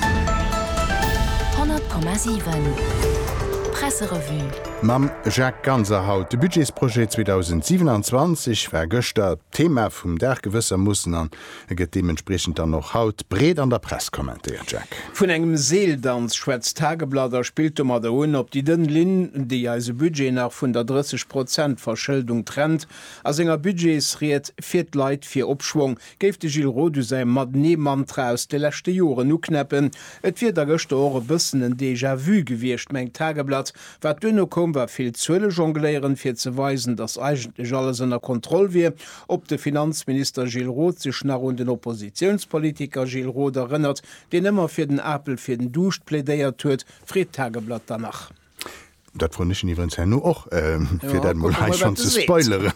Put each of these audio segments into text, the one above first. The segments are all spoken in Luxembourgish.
100,7 Presserevue. Mam Jacques Ganser haut. De Budgetsprojet 2027 war gëschter d'Thema vum Dag gewëssermoossen an e gëtt deementspriechend dann och haut breet an der Press kommentéiert. Jacques. Vun engem Seeldanz schwätzt d'Tageblatt a spillt domadder un op déi dënn Linn, déi eise Budget nach vun der 30 Prozent Verschëldung trennt. A senger Budgetsried fiert d'Leit fir Opschwong. Géif de Gilles Roth u säi Mat-Nee-Mantra aus de leschte Joren uknäppen. Et wier da gëschter och e bëssen en Déjà-vu gewiescht, mengt d'Tageblatt. Wat duerno koum, war vill Zuelejongléieren, fir ze weisen, datt eigentlech alles ënner Kontroll wier. Ob de Finanzminister Gilles Roth sech nach un den Oppositiounspolitiker Gilles Roth erënnert, deen ëmmer fir den Apel fir den Duuscht plädéiert huet, freet d'Tageblatt dann nach. Dat froen ech en iwwerens herno och, fir dat emol hei schonn ze spoileren.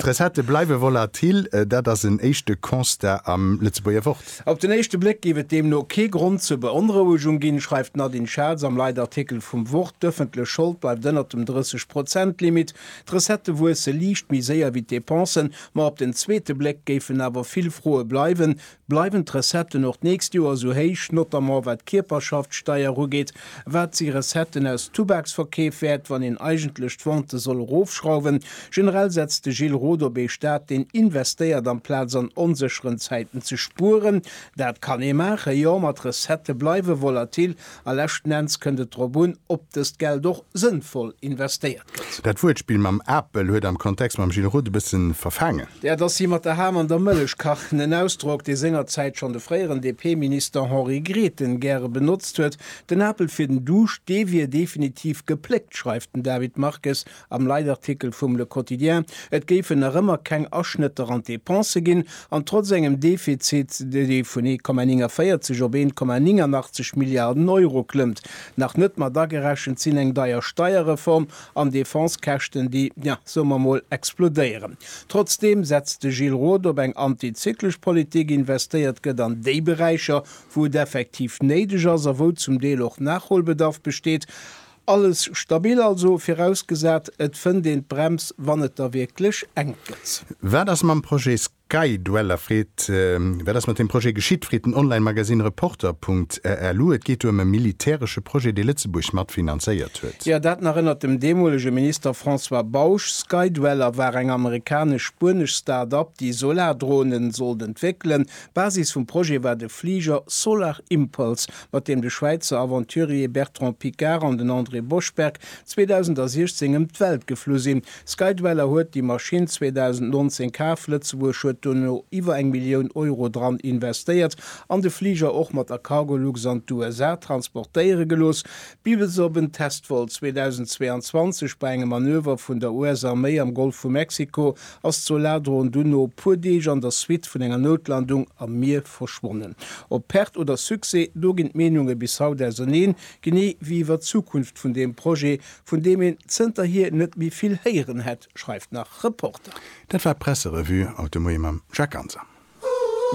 D'Recettë bleiwe volatil, dat ass en éischte Constat am Lëtzebuerger Wort. Op den éischte Bléck géif et deemno kee Grond zur Beonrouegung ginn, schreift d'Nadine Schatz am Leitartikel vum Wort. D'ëffentlech Schold bleift ënnert dem 30 Prozent Limit. D'Recettë wuesse liicht méi séier wéi d'Depensen. Ma op den zweete Bléck géifen awer vill Froe bleiwen, Bleiwen d'Recetten och d'nächst Joer esou héich, notamment wat d'Kierperschaftsteier ugeet? Wat si Recetten aus Tubaksverkeef wäert, wann een eigentlech d'Vente soll erofschrauwen? Generell setzt de Gilles Roth op ee Staat, deen investéiert amplaz an onsécheren Zäiten ze spueren. Dat kann ee maachen, jo, ma d'Recettë bleiwe volatil, A leschten Enns kënnt et drop un, ob dëst Geld och sënnvoll investéiert gëtt. Dat Wuertspill mam Apel huet am Kontext mam Gilles Roth e bësse verfaangen. Dat ass hie mat der Ham an der Mëllech kachen, en Ausdrock, dee sengerzäit schonn de fréieren DP-Minister Henri Grethen gäre benotzt huet. Den Apel fir den Duuscht, dee wier definitiv gepléckt, schreift den David Marques Am Leitartikel vum Le Quotidien, et géifen nach ëmmer keng Aschnëtter an d'Depensë ginn, an trotz engem Defizit, dee vun 1,49 op 1,89 Milliarden Euro klëmmt. Nach net mat agerechent sinn eng deier Steierreform an Defensekäschten, déi, ja, soe mer mol, explodéieren. Trotzdeem setzt de Gilles Roth op eng antizyklesch Politik, investéiert gëtt an déi Beräicher, wou et effektiv néideg ass a wou zum Deel och Nachholbedarf besteet. Alles stabil also, virausgesat et fënnt een d'Brems wann et da wierklech enk gëtt. Wat ass mam Projet Sky Dweller freet Wat ass mat deem Projet geschitt, freet den Online Magazine Reporter Punkt RLU. Et geet do ëm e militäresche Projet, dee Lëtzebuerg mat finanzéiert huet. Jo, dat nach ënnert dem deemolege Minister François Bausch. Sky Dweller war eng amerikanesch-spuenesch Start-Up, déi Solardronen sollt entwéckelen. Basis vum Projet war de Fliger Solar Impulse mat deem de Schwäizer Aventurier Bertrand Piccard an den André Boschberg 2016 ëm d'Welt geflu sinn. Skydweller huet déi Maschinn 2019 kaf, Lëtzebuerg huet dono iwwer eng Millioun Euro dran investéiert an de Fliger och mat der Cargolux an d'USA transportéiere gelooss, bis bis op en Testvol 2022 bei engem Manöver vun der US-Arméi am Golf vu Mexiko ass d'Soladron dunn no e puer Deeg an der Suite vun enger Noutlandung am Mier verschwonnen. Op Perte oder Succès, do ginn d'Meenunge bis haut auserneen, genee wéi iwwer d'Zukunft vun deem Projet, vun deem een zënterhier net méi vill héieren hätt, schreift nach Reporter. Dat war d'Presserevue haut de Moie mam Jacques Ganser.